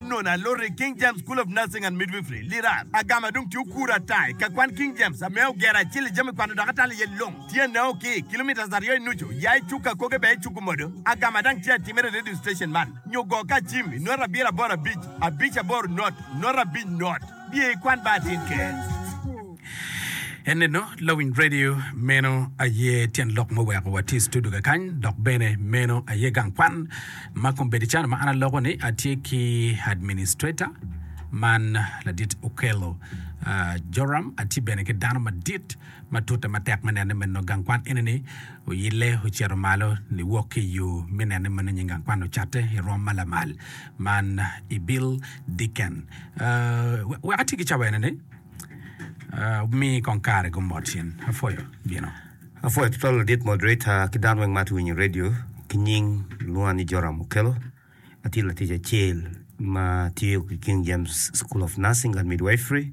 Nongo aloti i King James School of Nursing and Midwifery, Lirar, agama dong tye okura ata i ka kwan King James, ame ogero acel i jami kwano dok atal iye long. Tye anao ki i kilometres aryo i nucu ya i cuk akoge bene i cuk modo agama dang tye atimere i radio station man nyo go ka acim i note abiro aboro abic abic aboro note note abic note. Biye i kwan ba atin ker. Eneno lawiny radio meno aye tyen lok ma oweko watye i studio kakany dok bene meno aye gang kwan ma kombeddi cano ma an aloko ni atye ki administrator man ladit Okello ah, Joram atye bene ki dano madit ma tute matek me neno ni meno gang kwan eni ni oyille ocito malo niwok ki i yo me neno ni meno nying gang kwan ocatte i rwom ma lamal. man i Bill Dicken. Uh, wek ati ki cabo enene, uh, mi kong kare gumot cen. Apwoyo gino. Apwoyo tutwal ladit moderator ki dan weng mati winyo radio ki nying lwonga ni Joram Okelo. Ati latic acel ma tiyo ki King James School of Nursing and Midwifery.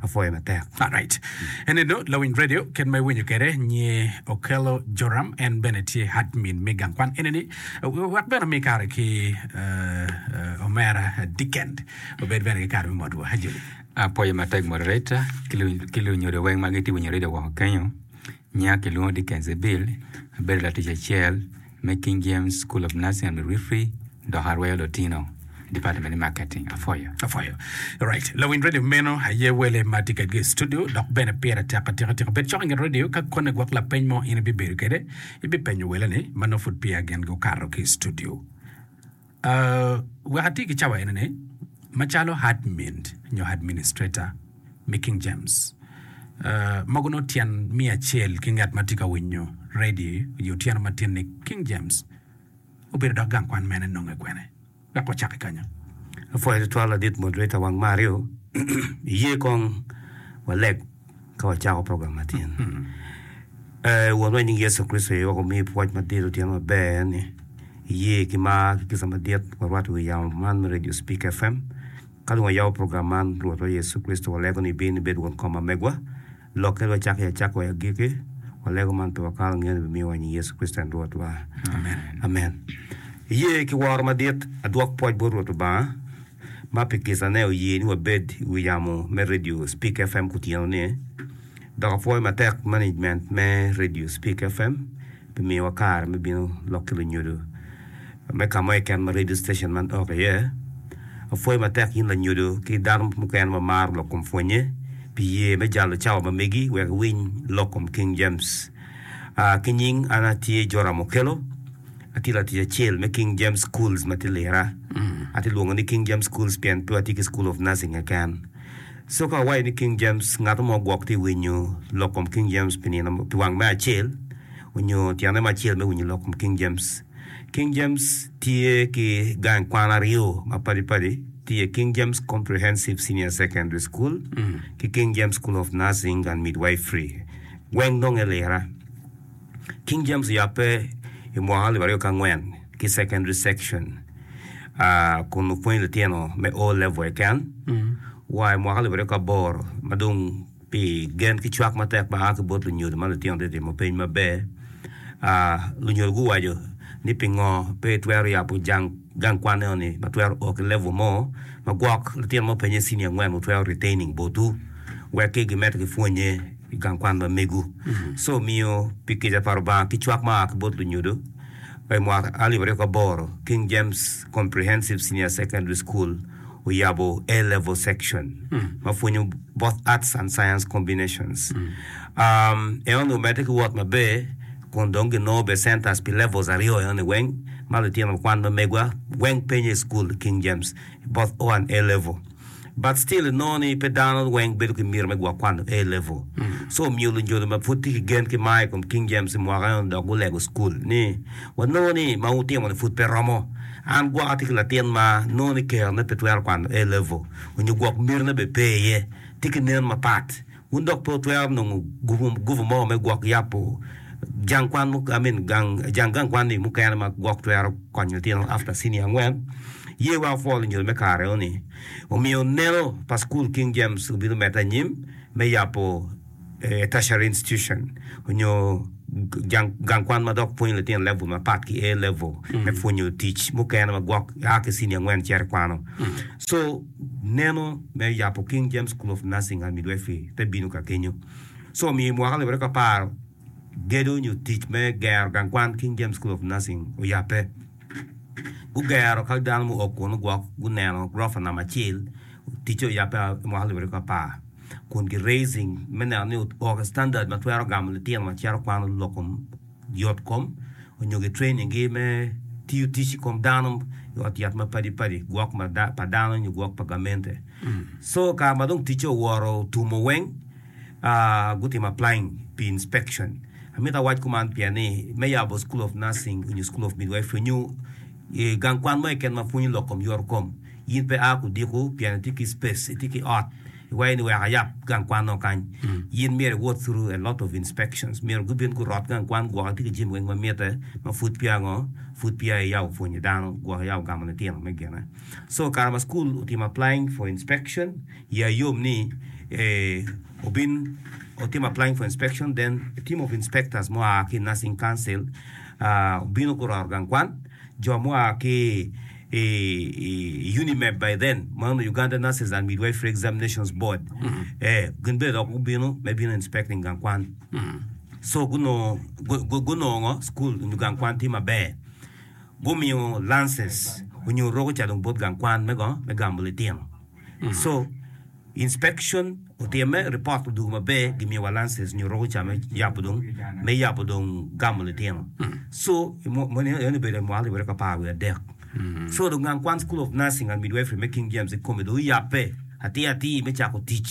Apwoyo matek. Alright. Eni dong lawiny radio kit ma iwinyo kwede nyi Okello Joram en bene tye admin me gang kwan eni ni wek bene omi kare ki uh, omera Dicken obed bene ki kare me mot wa. Ajoli. Apwoyo matek moderator ki lunyodo weng ma gitye winyo radio woko kenyo. Nya kilwongo Dickens i Bill, abedo latic acel me King James School of Nursing and Midwifery dok arweyo lotino i Department me Marketing. Apwoyo. Apwoyo. Right. Lawiny radio meno aye wele ma tye kedgi i studio dok bene pire tek atika tika. Bed cok inget radio ka kone gwok lapeny mo in ibibedo kede, ibipenyo wele ni ma nongo pud peya gin gukato ki i studio. Wek ati ki cawa enini, macalo admin nyo administrator me King James, mogo nongo tyen miyo acel ki ngat ma tye ka winyo redio i otyeno matin ni King James obedo dok gang kwan mene nonge kwene. Wek wacak ki kanyo. Apwoyo tutwal ladit moderator wang me aryo. Iye kong waleg. Ka wacako program matin, ee, Wonwa i nying Yecu Kricito aye wek omi pwoc madit otyeno maber ni iye ki mar ki kica madit warwatte wi yamo man me Radio Speak FM. Ka dong wayabo program man, Rwotwa Yecu Kricito, walego ni ibin ibed Won kom ma megwa. Lokke dong acakki acakka wa i agikki, walego man pe wakato ngene bimiwa i nying Yecu Kricito en Rwotwa. Amen. Iye ki woro madit, adwok pwoc bot Rwot Lubanga. ma pi kicane oye ni wabed i wi yamo me Radio Speak FM kutyeno-ni, dok apwoyo matek management me Radio Speak FM pi miyowa kare me bino lok ki lunyodo me ka mo keken ma radio station man oko iye. Apwoyo matek in lanyodo ki dano mukene ma maro lok kom pwonnye pi ye me jalo cawa ma megi wek iwiny lok kom King James. Ah, ki nying, an atye Joram Okello. Atye latic acel me King James Schools ma tye lira. Atye lwongo ni King James Schools pien pe watye ki School of Nursing keken. So ka wawaco ni King James, ngat mo gwok tye winyo lok kom King James pi nino, pi wang me acel onyo tyene me acel me winyo lok kom King James. King James tye ki gang kwan aryo ma padi padi, tye King James Comprehensive Senior Secondary School ki King James School of Nursing and Midwifery. Weng dong e lira. King James oyabbe i mwaka alip aryo ki angwen ki Secondary Section, kun opwonyo litino me O Level keken. Wa i mwaka alip aryo ki aboro ma dong pi gen ki cwak matek ma a ki bot lunyodo ma litino tye ka timo peny maber, lunyodo guwaco ni pingo pe itwero yabo jang. Gang kwan eno ni ma twero o ki level mo ma gwok litino ma openye senior angwen wu twero retaining bot wu wek ki gi medo ki pwonye I gang kwan ma megu so miyo pi kica pa Lubanga ki cwak ma oa ki bot lunyodo I mwaka alip aryo ki aboro King James Comprehensive Senior Secondary School oyabo A Level Section ma pwonyo both Arts and Science Combinations eno ni omedde ki wot maber kun dong ginongo bene centers pi levels aryo enoni weng ma litino lukwan ma megwa weng penyo i school i King James i both O and A level but still inongo ni pe dano weng bedo ki mito me gwok kwano A level so omiyo lunyodo ma pud tye ki gen ki mar i kom King James i mwaka enoni dok gulego school ni wanongo ni ma wutimo ni pud pe romo an gwok atye ki latin ma nongo ni kerone pe twero kwano A level onyo gwok mitine bene pe iye tye ki nen mapat Wun dok pe wutwero nongo gupu mo me gwok yapo jang kwan, I mean gang, jang gang kwan ni mukene ma gwok twero konyo litino after senior angwen. Ye wa opwol nyodi me kare o ni omiyo neno pa school King James obino mete anyim me yapo tertiary institution onyo jang gang kwan ma dok pwonyo litino level ma pat ki A level me pwonyo tic mukene ma gwok a ki senior angwen cito kwano. So Neno me yabo King James School of Nursing and Midwifery te bino ka kenyo. Co omiyo i mwaka alip aryo ki apar, gedo nyo tic me gero gang kwan King James School of Nursing oyabbe. Gugero ka dano mu o kuno gwok guneno gurofa namba acel, ticce oyabbe i mwaka alip aryo ki apar kun gi raising me neno ni o ki standard ma twero gamo litino ma cito kwano lok yotkom onyo gi training gi me tiyo tic i kom dano i ot yat ma padi padi gwok pa dano nyo gwok pa gamente so kare ma dong ticce oworo otumo weng gutimo applying pi inspection amito awac kuman pien ni me yabo school of nursing onyo school of midwifery onyo gang kwan mo keken ma pwonyo lok kom yotkom in pe a kudiko pien itye ki space itye ki ot. Iwayo ni wek ayab gang kwan ongo kany, in myero iwot through a lot of inspections. Myero gubin gurot gang kwan gwok itye ki jami weng ma mitte ma pud peya ngo, pud peya iya opwonyo dano gwok iya ogamo litino me gine. So kare ma school otimo applying for inspection, ya yom ni eh obin otimo applying for inspection then a team of inspectors mua ki i nursing council ah obino guroro gang kwan, jo mua ki i UNIMEB by then, ma nongo Uganda Nurses and Midwifery Examinations Board, eh, gin bene dok gubino me bino inspecting gang kwan. So gunongo gu- gu- gunongo school nyo gang kwan tye maber. Gumiyo lances onyo rogo ca dong bot gang kwan me go me gamo litino. so inspection otimme report odwogo maber gimiyowa license nyo ruko ca me yabo dong me yabo dong gamo litino so mo- mo- en obedo mwalo wek apar wiye adek so dong ngang kwan school of nursing and midwifery me King James kikome dong oyabbe atir atir me cako tic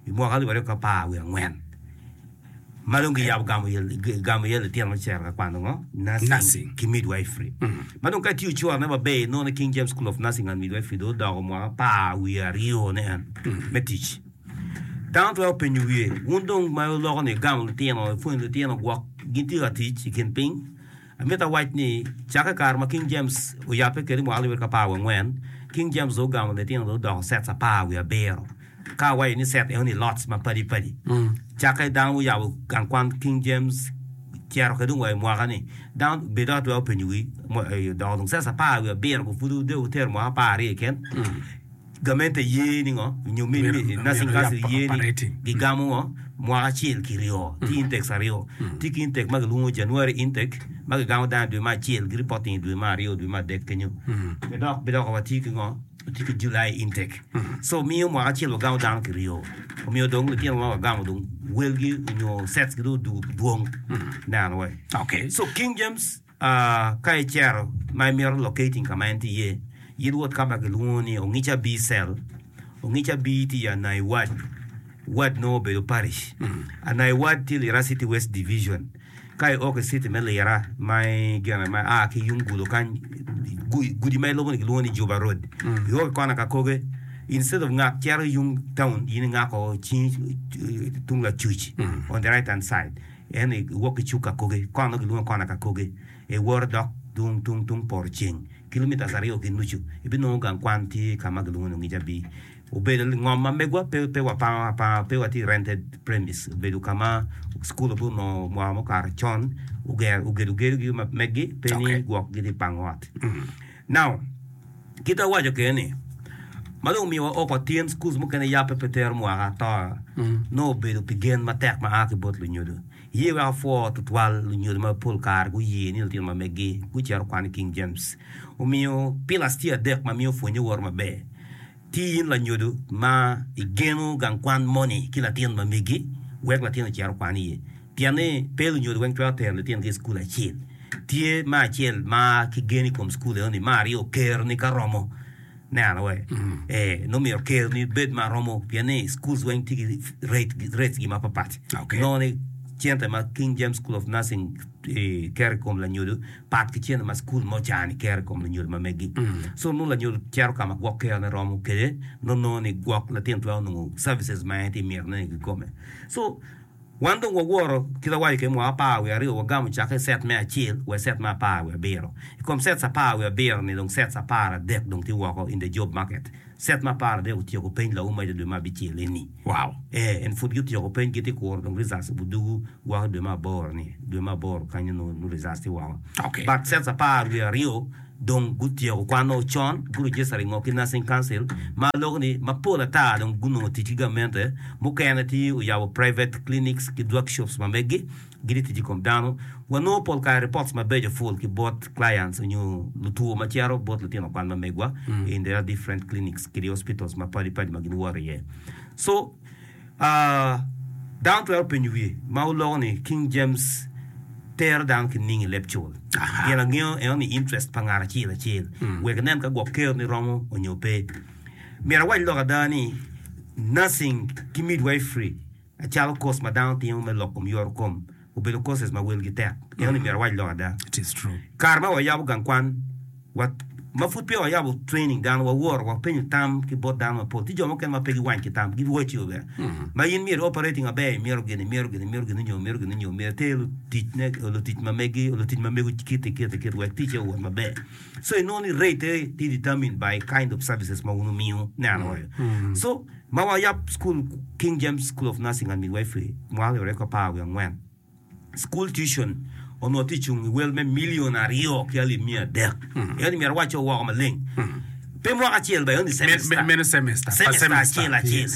I mwaka alip aryo ki apar wiye angwen ma dong giyabo gamo iye, gamo iye litino me cero ka kwano ngo? Nursing, Nursing. ki midwifery. Ma dong ka itiyo cura ne maber i none King James School of Nursing and Midwifery dong odoko mwaka apar wiye aryo ne en me tic. Dano twero penyo wiye, wun dong ma iloko ni igamo litino, ipwonyo litino gwok gitye ka tic i kin piny? Amito awac ni, cakke i kare ma King James oyabbe kwede i mwaka alip ariyo apar wangwen, King James dong ogamo litino dong odoko sets apar wiye abiro, ka awaco ni set enoni lots mapadi padi. Cakke dano guyabo gang kwan King James cito kwede wa i mwaka ni, dano bedo atwera openyo wi, odoko dong sets apar wiye abiro-gu pud wutero mwaka apar aryo keken. Gamente ye ni ngo? Nyo min ni nursing council ye ni gi gamo ngo? Mwaka acel ki ryo ki intakes aryo. Tye ki intake ma gilwongo January intake ma gi gamo dano dwe me acel gi reporting dwe me aryo dwe me adek kenyo. Ki dok bi loko watye ki ngo? Watye ki July intake. So miyo mwaka acel wa gamo dano ki ryo. Omiyo dong litino ma wa gamo dong welgi onyo sets gi dong odwong. Neno wai. Okay. So King James. A Ka icero ma imito locating ka ma en tye iye, in wot ka ma kilwongo ni Ongica B Cell. Ongica B tye i Anai Ward, ward nongo obedo parish. Anai Ward tye Lira City West Division. Ka i ok i city me Lira ma i gene ma i a ki yung gudo kany, gu- gudi ma ilubo ni kilwongo ni Juba Road, i ok i kona ka koge, instead of ngak cero yung town, in ingako cingi eh, tung lacuc, on the right hand side. En i wok ki cuk kakoge, kono gilwonge kona kakoge. I woro dok tung tung tung poto ceng, kilomitas aryo ki nucu, ibinongo gang kwan tye ka ma gilwongo ni Ongic Abii. Obedo lingom ma megwa pe, pe wapango apanga, pe watye i rented premise. Obedo ka ma cukul pe onongo mwaka mukato con, oger, ogedo gedogi ma meggi, pe ni gwokgi dhi pango ot. Now, kit awaco kene ni, ma dong omiyo wa ok watyen schools mukene yape pe tero mwaka to nongo obedo pi gen matek ma a ki bot lunyodo. Iye weko apwo tutwal lunyodo ma pol kare guye ni litino ma meggi gucito kwano i King James. Omiyo pilas tye adek ma miyo pwonye woto maber. Ci in lanyodo ma igengo gang kwan moni ki latin ma megi, wek latin ocer okwan iye. Pien ni pe lunyodo weng twero tero litingi i cukul acel. Tye me acel ma kigeno i kom cukul enoni, me aryo okeroni ka romo. Ne ano wee? Ee, nongo myero okeroni bed ma romo, pien ni schools weng tye ki rate, rates gi ma papat. Okay. Nongo ni cente ma King James School of Nursing eh, keto i kom lanyodo Pat ki cene ma cukul ma ocano i kero i kom lunyodo ma megi. So nongo lanyodo cito ka ma gwok kerone romo kwede nongo nongo ni gwok latin twero nongo services ma en tye mito ne kikome. So wan dong waworo kit awaco kede mwaka apar wiye aryo wagamo cake i set me acel wa i set me apar wiye abiro. I kom sets apar wiye abiro ni dong sets apar adek dong tye woko in the job market. Seth me apar dek otyeko peny laum ma ite dwe ma abicel-li-ni. Wow! Ee, en pud gityeko peny, gitye kuro dong results dong dugu wang i dwe me aboro-ni. Dwe me aboro kany onongo nongo results tye wang. Okay. But Seth apar wiye aryo dong gutyeko kwan onongo con, gurejista ringo ki Nursing Council ma lok-ni mapol ata dong gunongo tic ki gamente, mukene tye oyabo private clinics ki drug shops ma megi. gitye tic i kom dano. Wanongo pol kare reports mabeco full ki bot clients onyo lutwo ma cito bot lutino kwan ma megwa in there are different clinics kidi hospitals ma padi padi ma gin woto iye. So, aah, dano twero penyo wiye ma oloko ni King James tero dano ki ning i leb cul pien angeyo eno ni interest pa ngat acel acel wek inen ka gwok ker ni romo onyo pe. Myero awac lok ada ni nursing ki midwifery Acalo kos ma dano timo me lok kom yoro kom obedo courses ma welgi tek, geno ni myero awac lok ada. Kare ma wayabo gang kwan, wa, ma pud peya wayabo training dano, waworo, wapenyo tam ki bot dano mapol. Tye jo mukene ma pe giwany ki tam, giwacci wa bene. Ma in myero i operating maber, imyero gini, imyero gini, imyero gini, nyo imyero gini, nyo myero iter luticne, lutic ma megi, lutic ma mego kiti, kiti, kiti, wek ticce owot maber. So inongo ni rate-te determined by kind of services ma wun wumiyo, ne ano? So, Ma wayab Cukul King James School of Nursing and Midwifery mwaka alip aryo ki apar wiye angwen, cukul tuition onongo tye cung i wel me milion aryo ki alip miya adek. Eni myero awacce woko maleng. Pe mwaka acel ba, eni cemesta. Meno cemesta. Cemesta acel acel.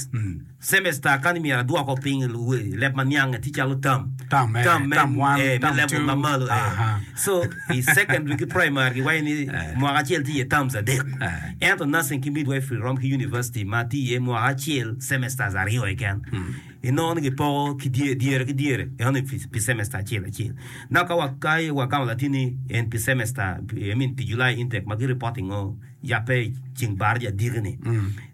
Cemesta kani myero adwoko piny i leb ma niange tye calo tam. Tam, eh, tam one, tam two. Tam me level ma malo, eh. So, i secondary ki primary giwaco ni mwaka acel tye iye terms adek. Ento nursing ki midwifery rom ki university ma tye iye mwaka acel semesters aryo keken. Inongo ni gipoko ki dye- dyere ki dyere ento ni pi- pi semester acel acel. Now ka wa- ka wagamo latin ni en pi semester pi- I mean pi July intake ma gi reporting-o yappe ceng Barija diki-ni.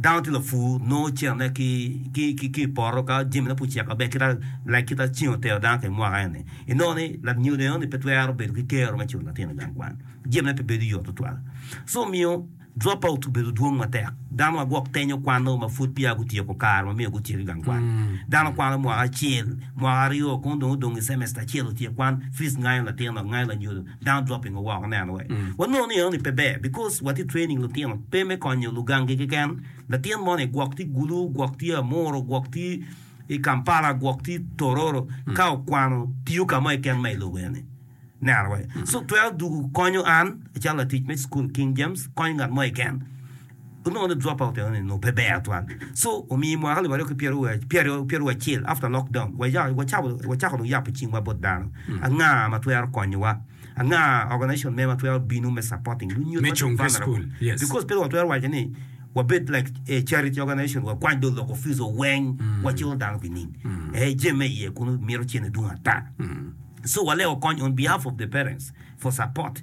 Dano tye lapur, nongo cene ki i poto ka jamine pud ocek maber. Kit ma ceng otero dano kwede i mwaka eni, inongo ni lanyut enoni pe twero bedo ki kero me culo latin i gang kwan, jamine pe bedo yot tutwal. So omiyo drop out obedo dwong matek. Dano ma gwok tenyo kwanno ma pud peya gutyeko kare ma myero gucit ki gang kwan. Dano kwano mwaka acel, mwaka aryo, kono dong odong i cemesta acel otyek kwan, fic ngayo latin dok ngayo lanyodo. Dano drop pingo wa oko neno wa i. Wanongo ni enoni pe ber because watye training lutino pe me konyo lugangi keken. Latin moni gwok tye Gulu, gwok tye Amuru, gwok tye i Kampala, gwok tye Tororo ka okwano tiyo ka mo keken ma i lobo enoni. Neno wa i. So twero dugu konyo an acalo latic me cukul King James konyo ngat mo keken. Onongo ni drop out enoni onongo pe ber twal so omiyo i mwaka alip aryo ki pyeraryo acel after lockdown wacako dong yabo cingwa bot dano. Anga ma twero konyowa? Anga organization me ma twero bino me supporting lunyut ma tye vulnerable? Because pe dong watwero waco ni wabed like a charity organization wakwany dong lok office wa weng waculo dano kining? Ee jami me iye kunu mito cene dwong ata. So walego kony on behalf of the parents for support.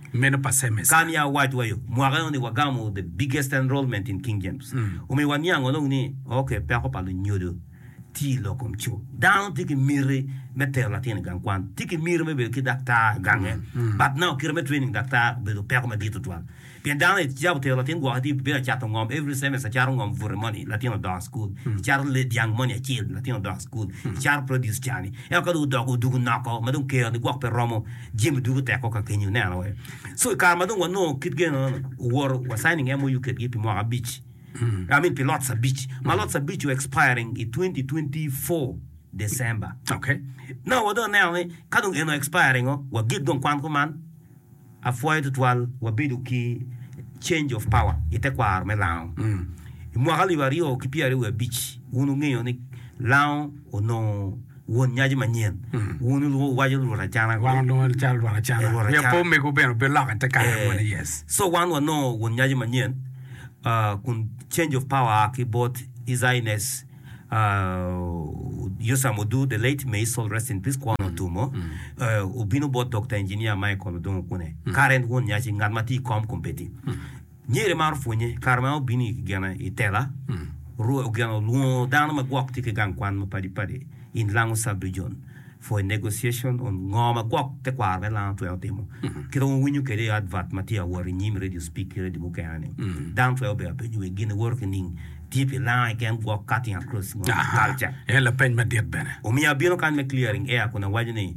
meno pa Semes. Ka ni awac wa yo mwaka eno ni wagamo the biggest enrollment in King James, omiyo waniango dong ni ok peko pa lunyodo tye i lok kom co. Dano tye ki miti me tero latin i gang kwan, tye ki miti me bedo ki daktar i gange, but now kite me training daktar obedo peko madit tutwal. Pien dano aye ca otero latin gwoko itye ibedo acato ngom every Semes acato ngom bute moni latin odok i school, icato lee dyang moni acel latin odok i school, icato produce cani ento ka dong odoko odugu noko ma dong kero ni gwok pe romo. Jami ducu tekko kakeny oneno wai so i kare ma dong wanongo kit gen eno ni owoto wa signing MOU kedgi pi mwaka abic I mean pi lots abic ma lots abic o expiring i twenty twenty four December Okay. now wa dong aneno ni ka dong eno expiring o wa gik dong kwan kuman apwoyo tutwal wabedo ki change of power i te kwaro me lango i mwaka alip aryo ki pyera aryo wiye abic wun wungeyo ni lango onongo Won nyaco manyen. Wun onongo wuwaco lworo acana-gu. Wan onongo calo lworo acana. Pien po mego bene obedo lok i te kare moni. Yes. So wan wanongo won nyaco manyen, kun change of power aa ki bot His Highness Yosam Odu, the late, may his soul rest in peace, Kwon Otumo, obino bot Doctor Engineer Michael Odong Okune, current won nyaci, ngat ma tye i kom kombeddi. Nyere man opwonye kare ma obino i gene i Tela, Roy ogeno lwongo dano ma gwok tye ki gang kwan mapadi padi i Nlango Subdivision for a negotiation on ngo ma gwok tekwaro me Lango twero timo ki dong owinyo kede i advert ma tye awot i nyim radio speak ki radio mukene ni dano twero bedo apenyo wek gin iwoto ki ning tye pi Lango i ken gwok cutting across ngo Aha, culture. en lapeny madit bene. Omiyo abino kany me clearing air kun awaco ni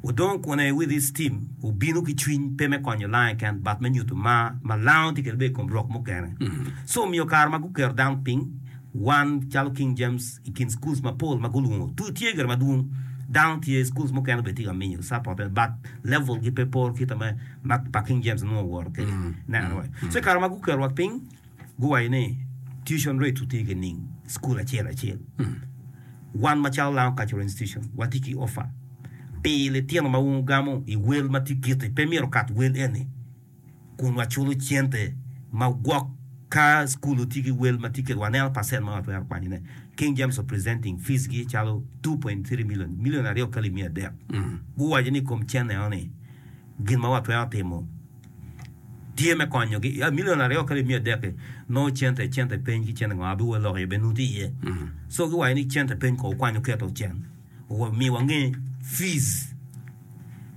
Wudongo kun aye wi Ric Tim wubino ki cwiny pe me konyo Lang keken but me nyuto mar ma Lang tye kwede bene i kom rok mukene. So omiyo kare ma guketo dano piny, wan calo King James i kin schools mapol ma gulwongo two tye kwede madwong. Dano tye schools mukene obed tye ka miyo support ne but level gi pe pol kita me ma pa King James nongo owoto kwede. Ineno? So i kare ma guketo wa piny, Guwaco ni, Tuition rate otye ki ning cukul acel acel. Wan macalo Lango Cultural Institution watye ki ofa pi litino ma wugamo i wel ma tye kiti pe myero okat wel eni kun waculo cente ma gwok ka cukul otye ki wel ma tye kiti waneno percent ma watwero kwanyone. King James o presenting fees gi calo two point three million, milion aryo ki alip miya adek. Guwaco ni i kom cen enoni gin ma watwero timo. tye me konyogi i milion aryo ki limiya adek-ki nongo cente cente peny ki cente ngo abiwor lok iye bene nongo tye iye so giwaco ni cente peny ko wukwany wuketo cen mi wange fiz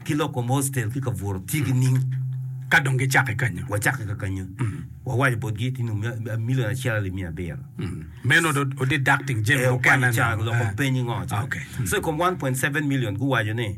ki lok kom ostel ki kabuto tye ki ning ka dong gicaki kanyo wacaki kakanyo wawaco botgi tye nongo milion acel ali miya abiro meno do deducting jami mukene Ee, okwanyo caro loko penyi ngo cen. Okay. So i kom 1.7 million guwaco ni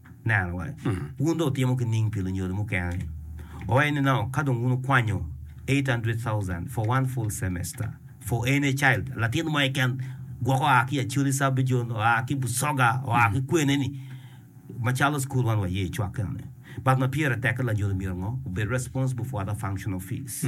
Nera wai, wun dong wutimo ki ning pi lunyodo mukene. Wawaco ni nongo ka dong wun wukwanyo eight hundred thousand for one full semester for any child, latin mo keken gwok oa ki Acholi Sub-Region, oa ki Busoga, oa ki kwene ni, macalo school man waye icwak eno ni, but ma pire tekke lanyodo myero ngo? Obed responsible for other functional fees.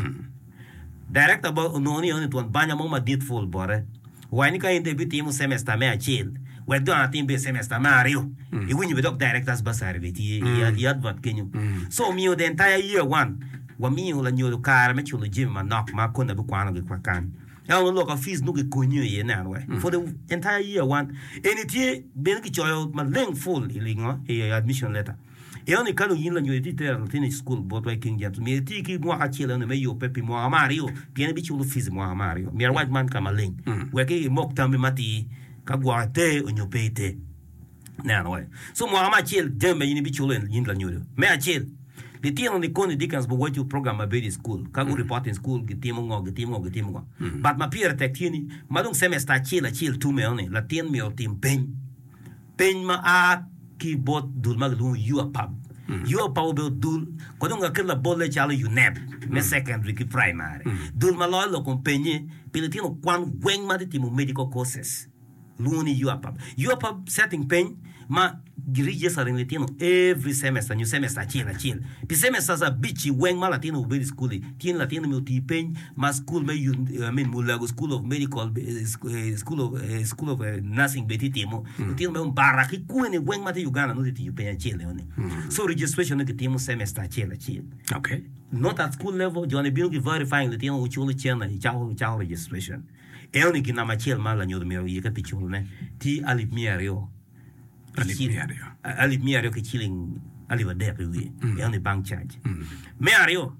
Director ba onongo ni onongo twon banya mo madit full bote. Owaco ni ka in dong ibitimo semester me acel, wek dong atim bene semester me aryo, iwinyo bene dok director's bursary bene tye i Harvard kenyo. So omiyo the entire year one, wamiyo lanyolo kare me culo jami manok ma koni abikwanogi kwek kany. Ento nongo loka fees nongo kikonyo iye nen wek for the entire year one. Eni tye bene kicoyo maleng full i admission letter. Ento nikato in lanyodo itye tero latin i cukul botwa i King James, myero iti ki mwaka acel eno me yubbe pi mwaka me aryo pien ibiculo fiz i mwaka me aryo. Myero awac man ka maleng wek imok tammi matir ka gwok ite onyo pe ite. Neno wai. So mwaka me acel jami ma in ibiculo en in lanyodo. Me acel, litino ni koni deacons biwaco program ma bedo i cukul. Ka guripot in cukul gitimo ngo gitimo ngo gitimo ngo. But ma pire tek tye ni ma dong semester acel acel tum eno ni latin myero otim peny. Peny ma a ki i bot dul ma kilwongo UAPAB, UAPAB obedo dul kodi onongo kit labolle calo UNEB me secondary ki primary. Dul ma loyo lok kom peny-nyi pi litino kwan weng ma tye timo medical courses lwongo ni UAPAB. UAPAB setting peny ma gi registering litino every semester nyo semester acel acel. Pi semesters abic-ci weng ma latin-ni obedo i cukul-li, tye ni latin-ni myero oti peny ma cukul me mulago, School of Medical, School of Nursing bene tye timo, lutino me Mbara ki kweni weng ma tye Uganda nongo tye tiyo piny acel eno ni. So registration ne kitimo semester acel acel. Okay. Not at school level, jo ni bino ki verifying litino wu culo cen aye wucako registration. Eno ni gin namba acel ma lanyodo myero oye ka pi culo ne tye alip miya aryo. Alip miya aryo. Alip miya aryo ki ciling alip adek i wiye. Eno ni bank charge. Me aryo,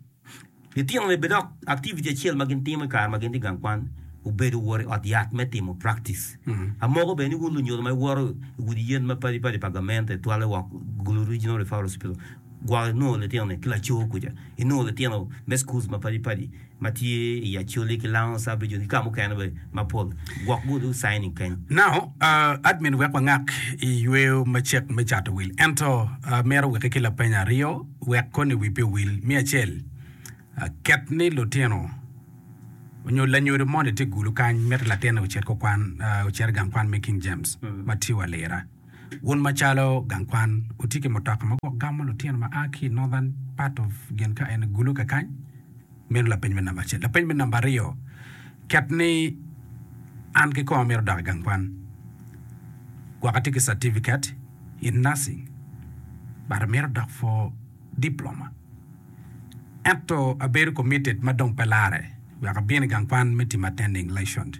Litino ni bidok activity acel ma gin timo i kare ma gin tye i gang kwan obedo wot i ot yat me timo practice. Amoko bene ni wun lunyodo ma iwoto i udi yen ma padi padi pa gamente twale wok Gulu Regional Referral Hospital gwok inongo litino ni ki laco kuca inongo litino me schools ma padi padi ma tye i Acholi ki Lango Sub Region ki ka mukene bene ma pol gwok gudu signing keny. Now uh, admin wek wangak i yweyo macek me cato wil ento uh, mito weki ki lapeny aryo. wek koni wi pe owil. Me acel, ket ni lutino nyo lanyodo moni tye gulu kany miti latinne ocit ko kwan, ocit i gang kwan me King James ma tye wa Lira. Wun macalo gang kwan, wutye ki mutoka ma gwok gamo lutino ma a ki i Northern part of gin ka eni gulu kakany? Meno lapeny me namba acel. Lapeny me namba aryo, Ket ni an ki kong amito dok i gang kwan. Gwok atye ki certificate in nursing but amito dok for diploma. Ento abedo committed ma dong pe larre wek abin i gang kwan me timo attending licence.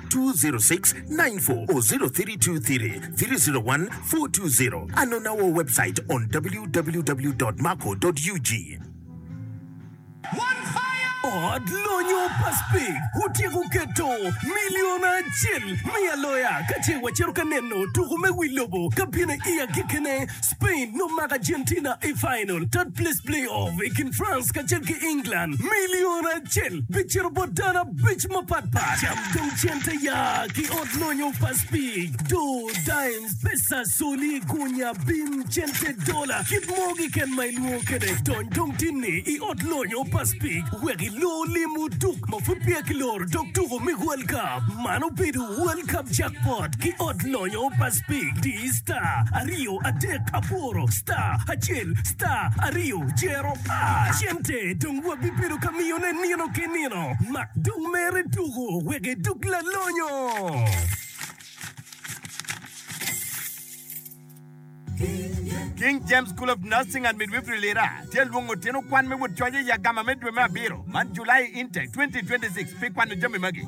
20694 or 0323 301 420. And on our website on www.marco.ug. Ot lonyo pa Speke otyeko keto milion acel me aloya ka ce wacito ka neno tuko me wi lobo ka bino i agikine. Spain nongo mako Argentina i final. Third place playoff i kin France kacel ki England. Milion acel bicito bot dano abic mapat pat. Cam dong cente ya ki ot lonyo pa Spig. Do, dimes, pesa, soli, gunya, bim, cente, dola, kit mo kiken ma ilwongo kede. Dony dong tinni i ot lonyo pa Spig wek ilo lim oduk ma pud peya kiloro dog tuko me World Cup. Man obedo World Cup Jackpot ki ot lonyo pa. Pi di star aryo adek abworo star acel star aryo cero par cente dong wabibedo ka miyone nino ki nino. Mak dong mere tuku wek idug lalonyo. King James School of Nursing and Midwifery Lira tye lwongo tyen okwan me wot cwac i agama me dwe me abiro man, July Intake 2026, pi kwano jami magi.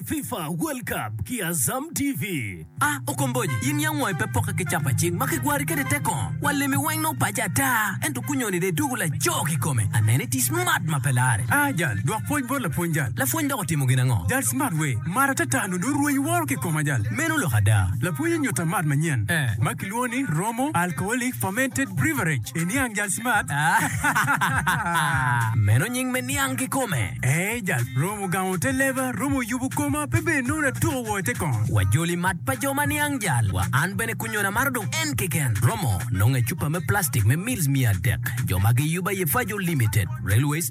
Fifa World Cup ki Azam TV. A Okomboji, in yam wangi pe pokke ki capa cing ma kigwari kwede te kong? Wa limi weng nongo pace ata, ento kunyoni dong ituku laco kikome. Aneno iti smart ma pe lare. A Jal, dwok pwoc bot lapwony jal. Lapwony dok otimo gin ango? Jal smart we, mara te tano dong rweny woro kikoma jal. Meno lok ada. Lapwony onyuta mat manyen ma kilwongo ni Romo Alcoholic Fermented Beverage. Iniang jal. Meno nying me niang kikome. Ee, jal romo gamo te leba, romo yubo koma, pe bed nongo atuko woko i te kong. Wajoli mat pa jo ma niang jal. Wa an bene kunyona maro dong en keken. Romo nonge cupa me plastic me mils mia adek. Jo ma giyuba ye Fajo Limited, Railways,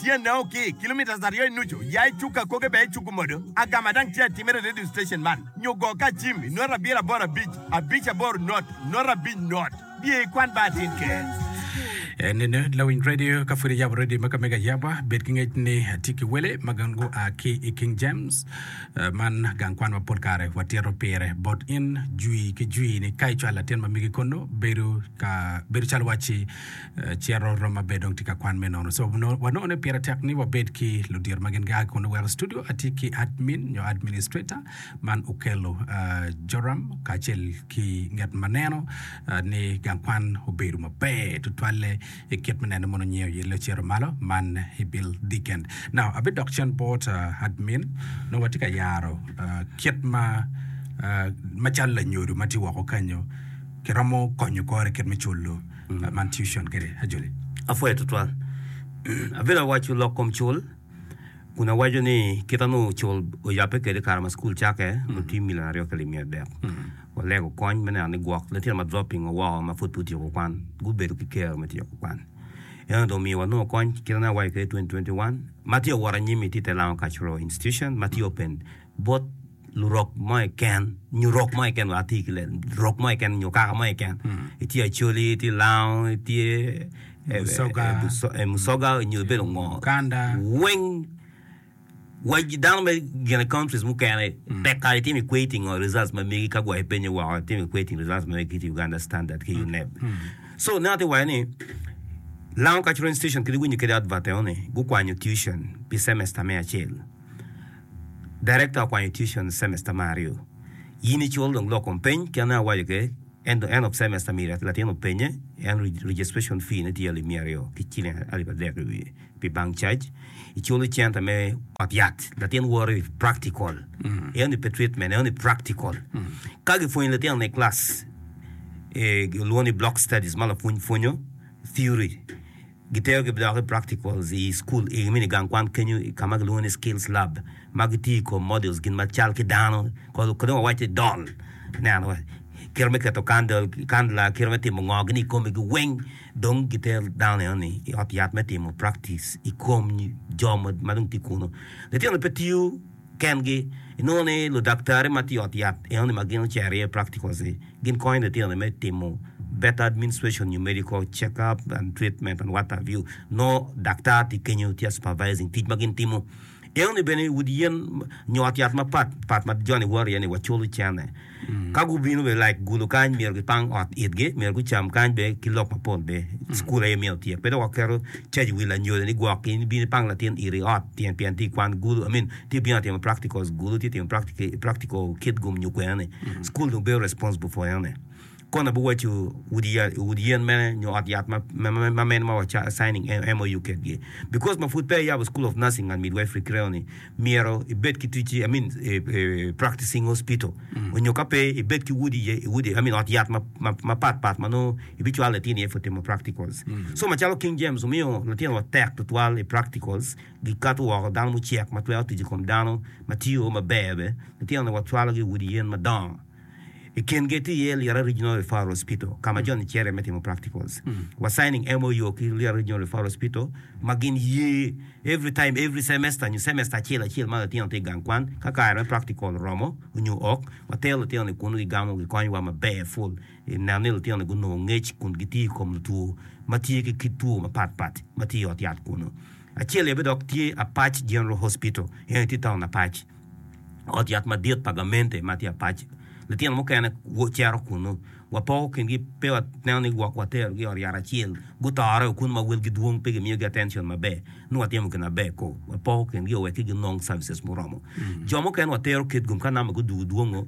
Tyene o ki kilometres aryo i nucu, ya i cuk akoge bene icuku modo. Agama dang tye atimere i radio station man, nyo go ka acim i note abiro aboro abic, abic aboro note, note abic note. Biye i kwan ba atin ker. Eni ne lawiny radio ka pud iyabo radio ma kamege ayaba. Bed ki ngec ni atye ki wele ma gang gua ki i King James. Eh, Man gang kwan ma pol kare watito pire bot in jwi ki jwi ni ka icwalo latin ma megi kono bedo ka bedo calo wacci Ciro oromo abe dong tye ka kwan me nono. So no, wanongo ne pire tek ni wabed ki ludiro ma gin gaa kunu weko studio atye ki admin nyo administrator man Okello uh, Joram kacel ki nget ma neno uh, ni gang kwan obedo maber tutwalle i kit me neno mono nyeo yelle ciro malo man i Bill Deacon. Now abe dok cen bot uh, admin no watye ka yaro uh, kit ma uh, macalo lanyodo ma tye woko kanyo kiromo konyo kore kit me culo man tuition kede ajoli. Apwoyo twatwal. Abedo awaco lok kom cul kun awaco ni kita nongo cul oyabbe kede kare ma cukul cakke lutini milion aryo ki lib miya adek walego kony me neno ni gwok litino ma dropping wa woko ma pud pe otyeko kwan gubedo ki kero me tyeko kwan. Eno dong omiyo wanongo kony kita ne awaco kede 2021 ma tye awot anyim-mi tye i te Lango Kacro Institution ma tye open bot lurok mo keken nyo rok mo keken wek atir ki lela rok mo keken nyo kaka mo keken itye acoli itye lango itye eh, Musoga. eh, buso- eh, musoga nyo ibedo ngo Kanda. weng wa dano me gine countries mukene tek kare itimo equating o results ma megi ka gwayo penyo woko itimo equating results ma megi ki Uganda standard ki UNEB so ne atye waco ni Lango Cultural Institution kadi winyo kadi advert eno ni gukwanyo tuition pi semester me acel Director okwanyo tuition semester me aryo in icul dong lok kom peny kene awaco ke ento end of semester myero latin openye en registration fee ne tye alip miya aryo ki ciling alip adek i wiye pi bank charge iculo center me ot yat latin woro i practical en ni pe treatment en ni practical ka gipwonyo litino ni class kilwongo ni block studies ma lapwony pwonyo theory Giteyo ki dok i practicals i cukul i mini gang kwan kenyu ka ma gilwongo ni Skills Lab ma gitiyo i kom modules gin ma cal ki dano kong dong wawac ni dol ineno kite me keto kandel kandla kite me timo ngo gin i kome gi weng dong gitero dano eno ni i ot yat me timo practice i kom jo ma dong tye kunu litino pe tiyo kengi. Inongo ni ludaktari ma tye i ot yat enoni ma gin ocero iye practicals-li gin konyo litino-ni me timo better administration nyo medical checkup and treatment and what have you. Nongo daktar tye kenyo tye ka supervising tic ma gin timo. Enoni bene i udi yen nyo ot yat mapat pat ma joni woro iye-ni waculo cene. Ka gubino bene like gulu kany myero gipang ot itgi, myero gucam kany bene ki lok mapol bene. Cukul aye myero otyek. Pe dok waketo caji wi lanyodo ni gwok in ibino ipang latin iri i ot tyen pien tye i kwan gulu, I mean tye bino atimo practicals gulu, tye timo practical kit gum nyo kwena ni. Cukul dong bedo responsible for eno ne. Kono abiwaco udi yen mene nyo ot yat ma mene ma wasigning MOU kedgi. Because ma pud peya iyabo School of Nursing and Midwifery kireyo ni myero ibed ki ticci, I mean practicing hospital, onyo ka pe ibed ki udi I mean ot yat mapat pat ma nongo ibicwalo litini iye for timo practicals. So macalo King James omiyo litinowa tek tutwal I practicals, gikato woko dano mucek ma twero tic I kom dano ma tiyo maber bene, litino ni wacwalogi I udi yen madongo. I kin gi tye iye Lira Regional Referral Hospital ka ma joni cere me timo practicals. Wa signing MOU ki Lira Regional Referral Hospital ma gin ye every time, every semester nyo semester acel acel ma latin aye tye i gang kwan, ka kare me practical oromo nyo ok, watero litino ni kunu gigamo gikonyowa maber ful i neno ni litino ni gunongo ngec kun gitiyo i kom lutwo ma tye ki kit two mapat pat ma tye i ot yat kunu. Acel aye bene dok tye Apac General Hospital, eno tye i taun Apac. ot yat madit pa gamente ma tye apac. Litino mukene gucito kunnu. Wapoko kingi, pe waneno ni gwok waterogi i ot yat acel. Gutore o kunnu ma welgi dwong, pe gimiyogi attention maber. Nongo watimo gin maber koo. Wapoko kingi o wek ki ginong services muromo. Jo mukene watero Kitgum ka namba gudugo dwongo,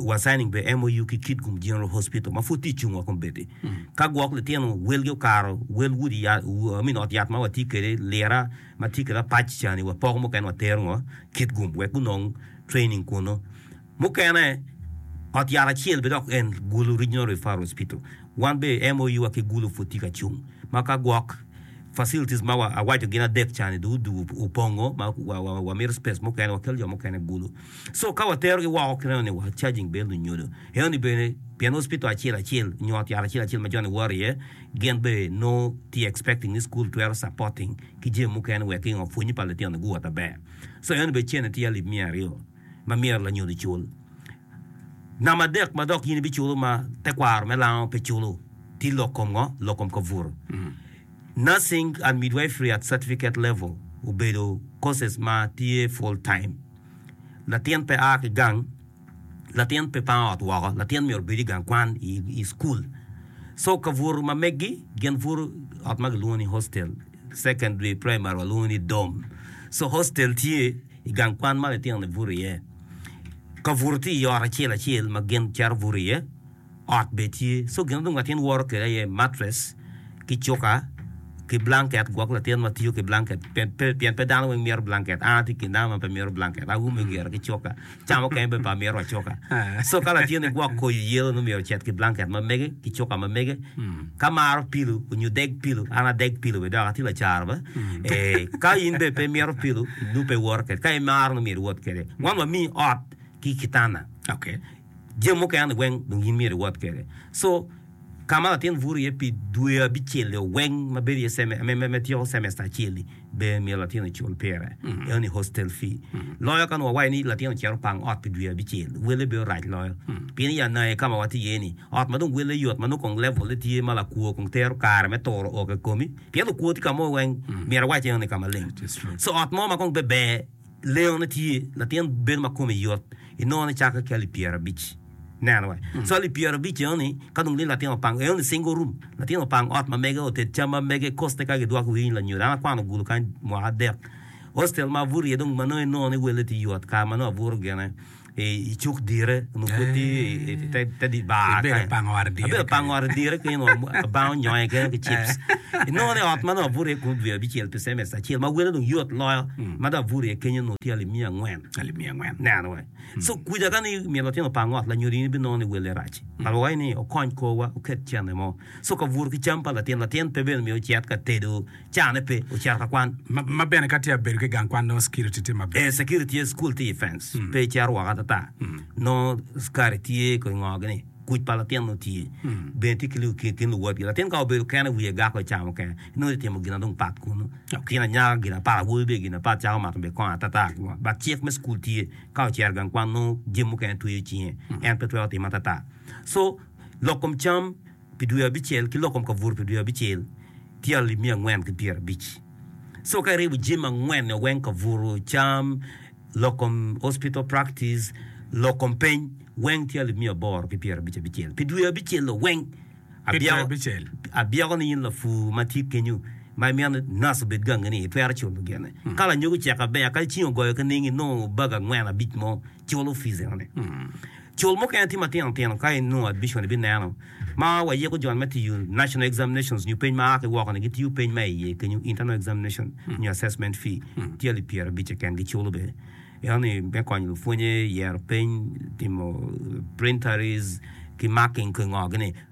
wa signing be MOU ki Kitgum General Hospital ma pud tye i cung wa kong bedi. Ka gwok litino welgi okaro wel udi yat, I mean ot yat ma watye kwede, Lira, ma tye kaka pac ca ni wa poko mukene wa tero ngo kit gum wek gunong training kunu mukene ot yat acel be dok en gulu regional referral hospital wan be MOU wa ki gulu pud tye ka cung ma ka gwok facilities ma wa awaco gin adek ca ni dong oduu opong ngo ma wa mito space mukene wa kel jo mukene gulu so ka wa tero gi woko kit eno ni wa charging bell ni nyodo eno ni bene pien hospital acel acel nyo ot yat acel acel ma joni woto iye Gin bene nongo tye expecting ni school twero supporting ki jami mukene wek kingo pwonye pa litino guwot aber. So eno bene cene tye alip miya aryo ma myero lanyodo cul. Namba adek ma dok in ibiculo ma tekwaro me lango pe culo tye lok kom ngo? Lok kom kabuto. Nursing and midwifery at certificate level obedo courses ma tye full time. Latin pe a ki gang. latin pe pango ot woko, latin myero obed i gang kwan i cukul. So ka bur ma megi gin bur ot ma gilwongo ni hostel, secondary, primary walwongo ni dom. So hostel tye i gang kwan ma litino ni buto iye. Ka bur tye i ot acel acel ma gin cito buto iye. ot bene tye so gin ma dong latin woro kwede aye matress ki cuka ki blanket gwok latin ma tiyo ki blanket pien pe dano weng mito blanket an atye i kin dano ma pe mito blanket an awume gire ki cuka ca mukene bene pe amito wa cuka so ka latin ni gwok koyo yelo ni myero ocit ki blanket ma mege ki cuka ma mege ka maro pilo nyo deg pilo an adeg pilo bene dok atye lacaro bene ka in bene pe imito pilo nongo pe iworo kwede ka imaro nongo myero iwot kwede wan wamiyi ot ki kitanda. Jami mukene weng dong in myero iwot kwede. So, ka ma latin buto iye pi dwe abicel-lio weng ma bedo iye ceme, me, me, me tyeko cemesta acel-li, ber myero latin ocul pire, eno ni hostel fee. Loyo ka nongo wawaco ni latin ocito pang ot pi dwe abicel, welle bedo rac loyo. Pien i anae ka ma watye iye-ni, ot ma dong welle yot ma nongo kong level-le tye ma lakwo kong tero kare me turo oko i komi, pien lukwo tye ka mo weng, myero awac eno ni ka maleng. So, ot mo ma kong beber, Leone tye latin bedo ma kome yot, inongo ni cake ki alip pyera abic. Neno wa. So alip pyera abic eno ni ka dong ni latin opang eno ni single room, latin opang ot ma mege oted cam ma mege koste ka gidwoko wii ni lanyodo an akwano gulu kany mwaka adek. Hostel ma abuto iye dong ma nongo inongo ni welle tye yot kare ma nongo abuto gene. icuk dire onongo pud tye i te di bar abedo pango ot dire abedo pango ot dire kene onongo abang onyonge kene ki chips inongo ni ot ma dong abuto iye kun dwe abicel pi cemes acel ma wele dong yot loyo hmm. ma dong abuto iye kenyo onongo tye alip miya angwen alip miya angwen neno wa hmm. so kuja ka ni myero watino pango ot lanyodi ni binongo ni wele rac hmm. palo wai ni okony kowa oket cene mo so kabuto ki cam pa latin latin pe bene miyo cet ka tedo cane pe ocito ka kwan. Ma bene ka tye abedo ki gang kwan nongo security tye maber. Ee security tye, school tye i fence pe icito woko atata nongo cukari tye ko ingo gini kuc pa latin nongo tye bene tye ki kin luwotgi latin ka obedo kene wiye gako i camo kene inongo tye timo gin adong pat kunu latin anyaka gin apat awobi bene gin apat cako mato bene kongo atata but cik me school tye ka ocito gang kwan nongo jami mukene tweyo cinge en pe twero timo atata so lok kom cam. pi dwe abicel ki lok kom kabuto pi dwe abicel tye alip miya angwen ki pyerabic. So ka iribo jami angwen nio weng kabuto, cam, lok kom hospital practice, lok kom peny weng tye alip miya aboro ki pyerabic abicel pi dwe abicel o weng. Abyeko ni in lapur ma tye kenyo ma imito ni naci obed gange ni itwero culo gine. Ka lanyogi ocek aber kadi cing ogoyo ki ningi inongo baga angwen abic mo. Cul ofice enoni. Cul mukene tye matino tino ka inongo admission ibineno ma wayiko jon me tiyo national examinations nyo peny ma a ki woko ni gitiyo peny ma iye kenyo internal examination nyo assessment fee tye alip pyera abic keken giculo bene enoni me konyo lupwonye yero peny timo printeries ki marking ki ngo gini.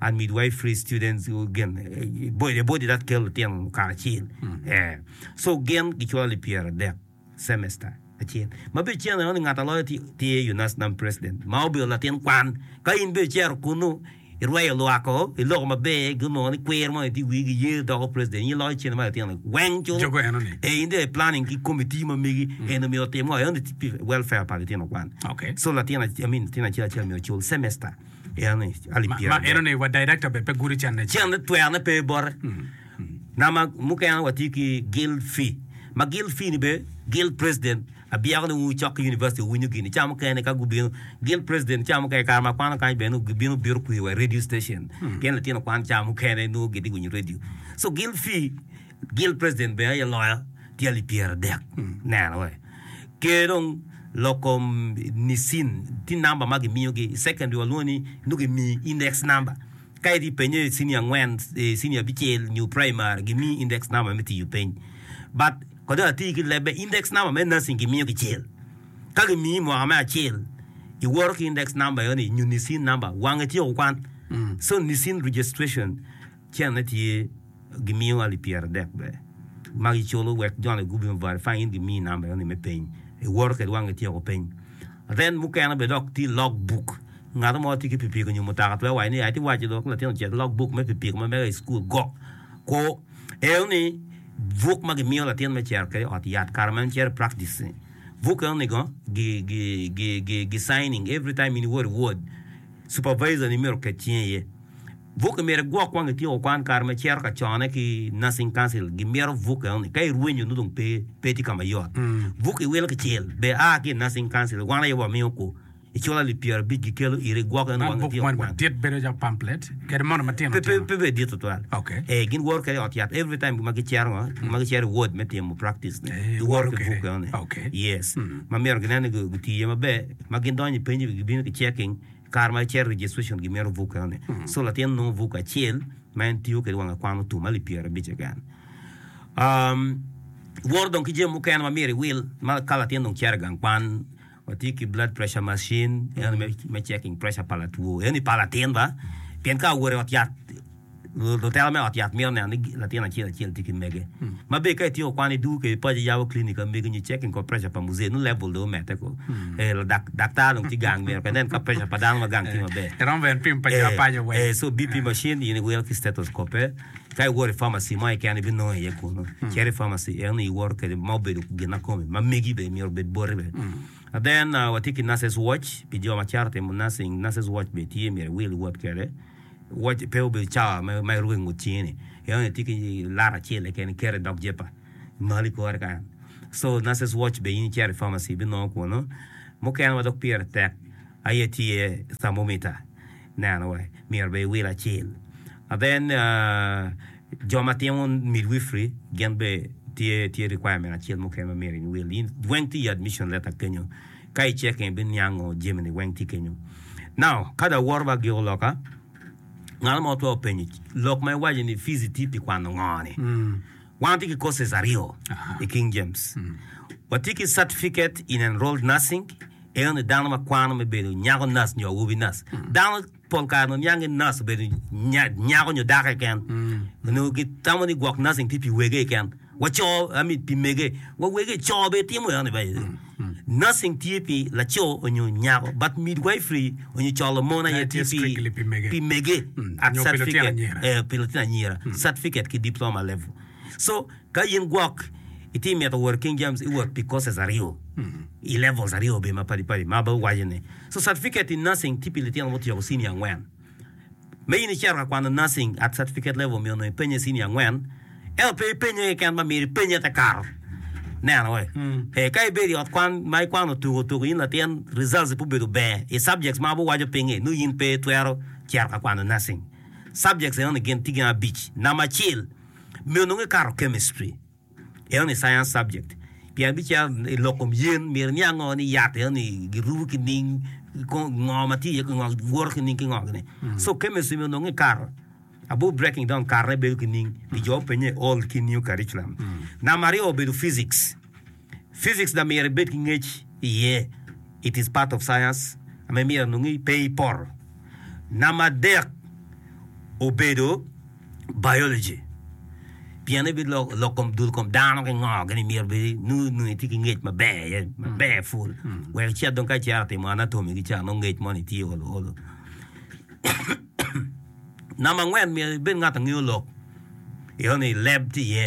and midwife free students gin body body dok telo lutino kare acel eh so gin gicwalo i pyera dek semester acel ma be cene ni ngata loyo ti ti e unas nam president ma obedo latin kwan ka in be cero kunu irweyo lwako iloko ma be gin mo ni kwir mo ti wigi ye doko president in loyo cene ma lutino weng culu jogo eno ni e in de planning ki committee ma megi eno mi otim ngo eno ni welfare pa lutino kwan okay so latin i mean latin acel acel mi ocul semester Ma enoni wa director bene pe gudo cente cen. Cente twer ne pe bote. Nama mukene wa tye ki guild fee. Ma guild fee ni bene guild president abyeko ni wu cok ki university wu winyo gini. Ca mukene ka gubino guild president ca mukene kare ma kwano kany bene gibino bito kwi wa radio station. Pien litino kwan ca mukene nwo gitye winyo radio. So guild fee Gin president bene aye loya ki alip pyeradek nera wai ker dong loko micin tye number ma gimiyo gi i secondary wa lwongo ni nongo gimi index number ka itye penyo i senior angwen i senior abicel nyo primary gimi index number me tiyo peny but ko dong atir ki leb be index number me nursing gimiyo kicel ka gimiyi mwaka me acel iwoto ki index number eno ni nyo nicin number wange tyeko kwan so nicin registration Cene tye gimiyo ali pyeradek ber ma giculo wek jone gubi ma vari fine in gimiyi number eno ni me peny iwoto kede wang ityeko peny then mukene bene dok tye log book ngato mo tye ki pipiki onyo mutaka twero waco ni ai ti waco dong ki latin ocel log book me pipiki ma mege i school go ko eno ni buk ma gimiyo latin me cero kede i ot yat kare ma en cero i practice ni buk eno ni go gi gi gi gi gi signing every time in iwoto i ward supervisor ni myero oket cinge iye Buk myero igwok kwang ityeko kwan kare ma icito ka cone ki Nursing Council gimyero buk eno ni ka irwenyo nongo dong pe pe tye ka ma yot. Buk iwil kicel bene a ki i Nursing Council wan aye wamiyo ko icula alip pyera abic gikelo iri igwok eno ni wang ityeko kwan. Man buk moni madit bedo calo pamphlet kadi mono matino tino? Pe pe pe dit tutwal. Ee gin woro kwede i ot yat every time ma gicito ngo ma gicito i ward me timo practice ni giworo ki buk eno ni. Yes ma myero ginen ni gutiyo iye maber ma gin donyo i penj gibino ki checking. Kare ma icito i registration gimito buk enoni so latin nongo buk acel ma en tiyo kwede wang akwano tum alip pyera abic keken woro dong ki jami mukene ma myero iwil ma ka latin dong cito i gang kwan watye ki blood pressure machine enoni me checking pressure pa latwo enoni pa latin ba pien ka awot i ot yat Lutela me ot yat mito neno ni latin acel acel tye ki mege. Ma ber ka ityeko kwan idwogo kwede i paco iyabo clinic ka megi nyo i checking kong pressure pa muzee nongo level dong omedde kong. Eh, ladak, daktar dong tye gang myero kong enen ka pressure pa dano ma gang tye maber. Eromo bedo pim pa jo apaco weng. Eh, so BP machine in iwiro ki stethoscope-pe, ka iwoto i pharmacy mo keken ibinongo iye kunu. Cito i pharmacy eno ni iwoto kwede ma obedo ginakomi ma megi bene myero obed boti bene. And then watye ki nurses watch pi jo ma caro timo nursing, nurses watch bene tye myero iwil iwot kwede. Watch pe obedo cawa ma iruko i ngut cingi-ni. Eno ni tye ki lat acel keken iketo i dog jeppa, i malo i kore kany. Co, Nurses Watch bene in icito i pharmacy ibinongo kunu. Mukene ma dok pire tek aye tye thermometer, neno wa myero bene iwil acel. And then, jo ma timo midwifery gin bene tye requirement acel mukene ma myero in iwil. In weng tye i admission letter kenyo. Ka i ceke ibiniango jami-ni weng tye kenyo. Now, ka dong awoto ba agiko loka, ngat mo twero penyo, lok ma iwaco ni fizi tye pi kwano ngo-ni? Wan watye ki courses aryo i King James. Watye ki Certificate in Enrolled Nursing, eno ni dano ma kwano me bedo nyako nac nyo awobi nac. Dano. Pol kare onongo niang ni nac obedo nyako nyo dako keken. Onongo gitamo ni gwok nursing tye pi wege keken. Wa co, I mean pi mege. Wa wege, co bene timo eno ni bene. Nursing tye pi laco onyo nyako but midwifery onyo colo mon aye tye pi mege at certificate, ee pi lutino anyira, certificate ki diploma level. So, Ka in gwok itye mito wot i King James, iwot pi courses aryo, i levels aryo bene ma padi padi ma bene waco ni, so certificate in nursing tye pi litino mutyeko senior angwen. Me in icito ka kwano nursing at certificate level myero onongo ipenye senior angwen, ento pe ipenye keken ma myero ipenye te kato. Neno wai? Ee, ka ibedo i ot kwan ma ikwano tuko tuko in latin, results i pe obedo ber i subjects ma wawaco pinyi, nongo in pe itwero cito ka kwano nursing. Subjects enoni gin tye gin abic. Namba acel. Myero onongo ikato chemistry enoni science subject pien abicel i lok kom yen myero iniang ngo ni yat enoni girubu ki ning ngo ma tye iye ki ngo woto ki ning ki ngo gini so chemistry myero onongo ikato abor breaking down karone bedo ki ning pi jo mupenye old ki new curriculum namba aryo obedo physics Physics dong myero ibed ki ngec iye, it is part of science ame myero nongi pe ipoto. Namba adek obedo biology pien ibit lok kom dul kom dano ki ngo gini myero bed nongo nongo itye ki ngec maber iye maber full wek icit dong ka icito timo anatomy ki ca nongo ngec moni tye olo olo. Namba angwen myero ibed ngat angeyo lok iyoni lab tye iye.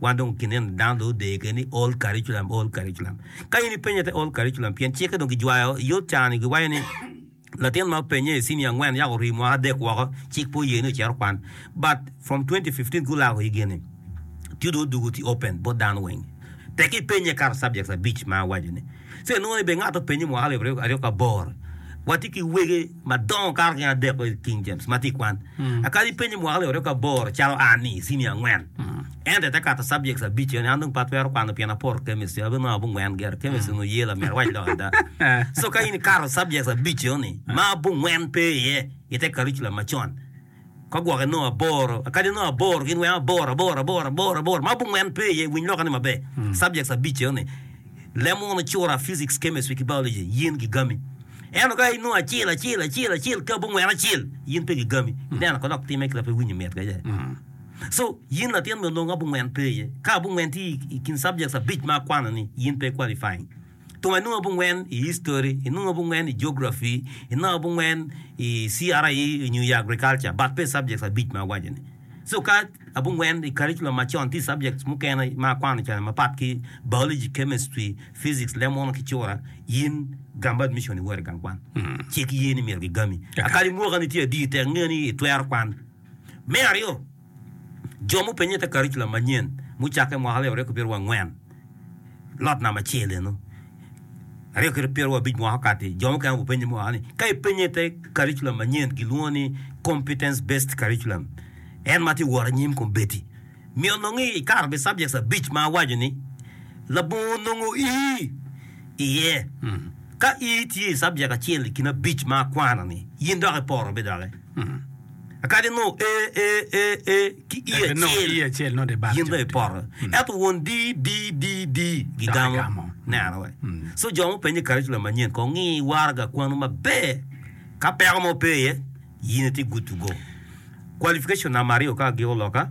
wan dong gineno dano dong odee kene ni old curriculum, old curriculum. Ka in ipenye te old curriculum pien cikke dong gijwayo yot cani giwaco ni latin ma openye i senior angwen yako orii mwaka adek woko cik pe oye ni ocit okwan but from 2015 gulako i gini tye dong odwogo tye open bot dano weng. Tek ipenye kato subjects abic ma awaco ni Ci enongo ni bene ngat openye mwaka alip aryo ki aboro, watye ki wege madongo kato ki adek wa i King James ma tye i kwan. Kadi ipenye mwaka alip aryo ki aboro calo an ni i cinia angwen, ento ite kato subjects abic eni, an dong pe atwero kwano pien aporo Chemistry, abinongo abungwen gire. Chemistry onongo ye lamer wac lok ada. So ka in ikato subjects abic eni ma abungwen pe iye ite curriculum macon, Ka gwoke nongo aboro, kadi nongo aboro gin weng aboro aboro aboro aboro aboro ma abongwen pe iye, winy loka ni maber. Subjects abic eno ni, Lem wunu cura, Physics, Chemistry ki Biology, yin gigami. Ento ka inongo acel acel acel acel ki abongwen acel, yin pe gigami. Ineno ka dok timme kit ma pe winyi mitga iye. So, yin latin ni onongo abongwen pe iye. Ka abongwen tye i kin subjects abic ma akwano ni, yin pe qualifying. Thum enongo bungwen i History, enongo bungwen i Geography, enongo bungwen i CRE nyo i Agriculture but pe i subjects abic ma awaco ni. So ka abungwen i curriculum macon tye subjects mukene ma akwano cani mapat ki Biology, Chemistry, Physics, Lemono ki Cura, in gam admission iwot i gang kwan. Cik ye ni myero gigami. Kadi mwaka ni tye adi tek nge ni itwero kwan. Me aryo, Jo mupenye te karuculam manyen mucakke mwaka alip aryo ki pyeraryo angwen lot namba acel eno. Aryo ki pyeraryo abic mwaka okati, jo mukene gupenye mwaka ni ka ipenye te karuculam manyen gilwongo ni Competence Based Curriculum en ma tye wot anyim kombeddi mi onongi ikato pi subjects abic ma awaco ni labongo onongo ii iye. Ka ii tye i subject acel i kin abic ma akwano ni yin dok iporo be doki. Kadi nongo ee-ee-ee-ee ki i acel gin dong i poto, ento won dii-dii-dii-dii gigamo neno we. So jo mupenyo i kariculam manyen kong ngi waraga kwanu maber. Ka peko mo pe iye, in itye good to go. Qualification namba aryo ka agiko loka,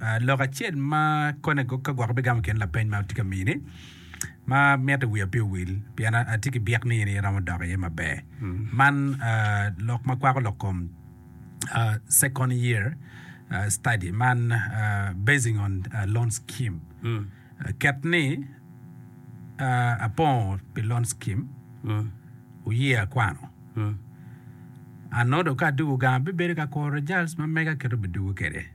Lok acel ma kone ka gwoko pe gamo kin lapeny ma atye ka mini ma mitte wiya pe owil pien atye ki byek ni in iromo dok iye maber. Man ah, lok ma kwako lok kom ah, second year ah, study man ah, basing on ah, loan scheme. Ah, Ket ni ah, apongo pi loan scheme oye akwano. Anongo dong ka adwogo gang bibedo ka kuro results ma mega kit obidugo kwede.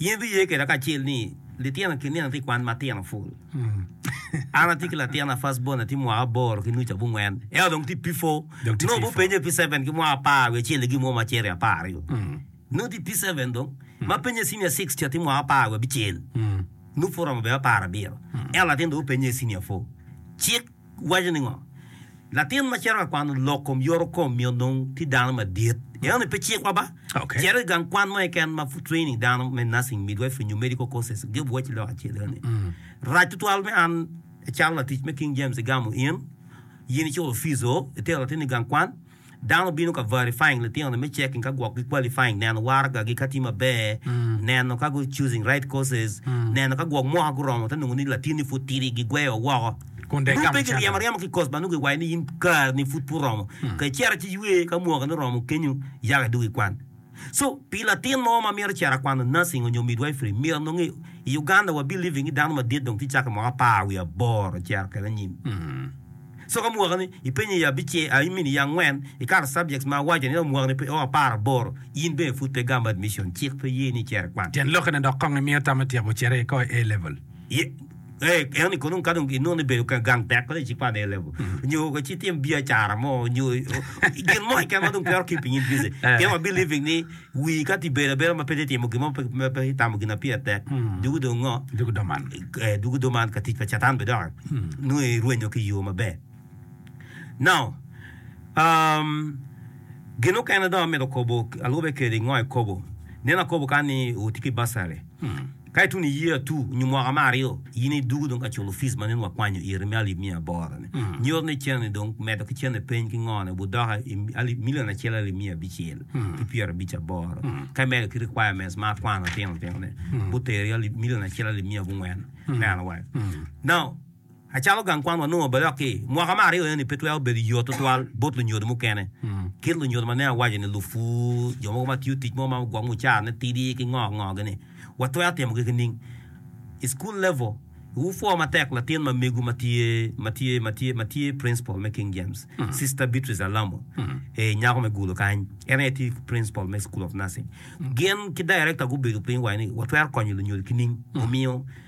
In riye keda kacel ni litino kin niang ti kwan matino pul. An ati ki latin a first born ati mwaka aboro ki nucu abungwen. Eo dong ti P4. Dong ti Nongo P4. bupenye P7 ki mwaka apar wiye cel gi mo ma cere apar aryo. Nongo ti P7 dong. Ma penye senior six ci ati mwaka apar wiye abicel. Nongo pud oromo bedo apar abiro. Eo latin dong openye i senior four. Cik Waco ningo? Latin ma cito ka kwano lok kom yoro kom myero onong tye dano madit. Enoni pe cikwa ba. Okay. Cito i gang kwan mo keken ma food training dano me nursing, midwifery nyo medical courses give watch lok acel enoni. Mm. Rac tutwal me an calo latic me King James igamo in, in iculo fees o, itero latin i gang kwan, Dano bino ka verifying litino ni me checking ka gwok gi qualifying, neno waraga gi ka tye maber, neno ka gu choosing right courses, neno ka gwok mwaka guromo te nongo ni latin ni pud tidi gi gweyo woko. Kun dong Nongo pe gi ryemo aryema ki course man nongo gi waci ni in kari ni pud pe oromo. Ka icito ci ywe ka mwaka ni oromo kenyo yako idog ikwan. So, pi latin mo ma mito cito akwano nursing onyo midwifery, myero nongo ni i Uganda wa believing ni dano madit dong tye cake mwaka apar wiye aboro cito kede anyim. So ka mwaki ni ipenyo i abice, I mean i angwen, ikato subjects ma awaco ni mwaki ni pe o apar aboro, in bene pud pe gamo admission, cik pe ye ni icito ikwan. Tyen lokke ne dok kong imito tama tyeko cere iko i A-level. Ento i kono ka dong inongo ni bedo ka gang dek kodi ci pa ne level nyo ka ci tim bia cara mo nyo gin mo iken ma dong twero keeping in busy kene wa believing ni wi ka ti bedo abeda ma pe ti timo gin mo pe ti tamo gin apier tek dugu dong ngo dugu doman dugu doman ka tic pa catan be dok nongo irwenyo ki yo maber now um, gin okene dong amito kobo alube kedi ngo ikobo nino akobo kan ni oti ki basari Ka ituno i year two nyo mwaka me aryo, in idugo dong ka culo fic ma nongo wakwanyo iri me alip miya aboro-ni. Nyuto ni cene-ni dong medo ki cene piny ki ngo-ni gudoke i alip milion acel alip miya abicel ki pyerabic aboro. Ka imedo ki requirements ma akwano tino tino-ni, guteri i alip milion acel alip miya abongwen. Neno wa. Now. Acalo gang kwan wanongo balok-ki, mwaka me aryo eni pe twero bedo yot tutwal bot lunyodo mukene. Kit lunyodo ma nen awaco ni lupur, jo mogo ma tiyo tic mo ma gwok mucarane tidi ki ngo ngogi-ni, watwero timogi ki ning? I school level, wupwo matek latin ma megu ma tye, ma tye, ma tye, ma tye principal me King James, Sister Beatrice Alamo, ee, nyako me gulo kany, en aye tye principal me School of Nursing. Gin ki director gubedo piny waco ni watwero konyo lunyodo ki ning? Omiyo,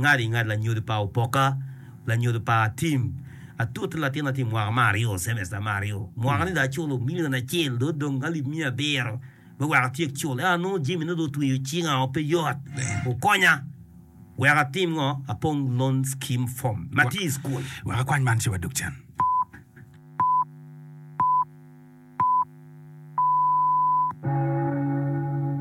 Ngado i ngat lanyodo pa opoka, lanyodo pa tim atut latin ma tye i mwaka me aryo, semester me aryo. Mwaka ni dong aculo million acel dong odong alip miya abiro me wek atyek cul. Ento nongo Jimmy nongo dong otweyo cinga o pe yot. Wukonya wek atim ngo apong loan scheme form me atye i school. Wek akwany man ci wadog cen.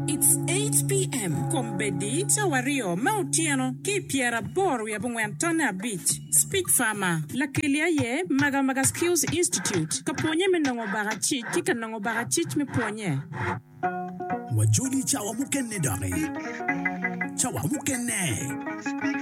It's eight PM kombeddi cawa aryo me otyeno ki i pyeraboro wiye abongwen tonne abic. Speech Farmer, Lakeli aye Magamaga Skills Institute ka pwonye me nongo baka cic ki ka nongo baka cic me pwonye. Wajoli cawa mukene doki. Cawa mukene.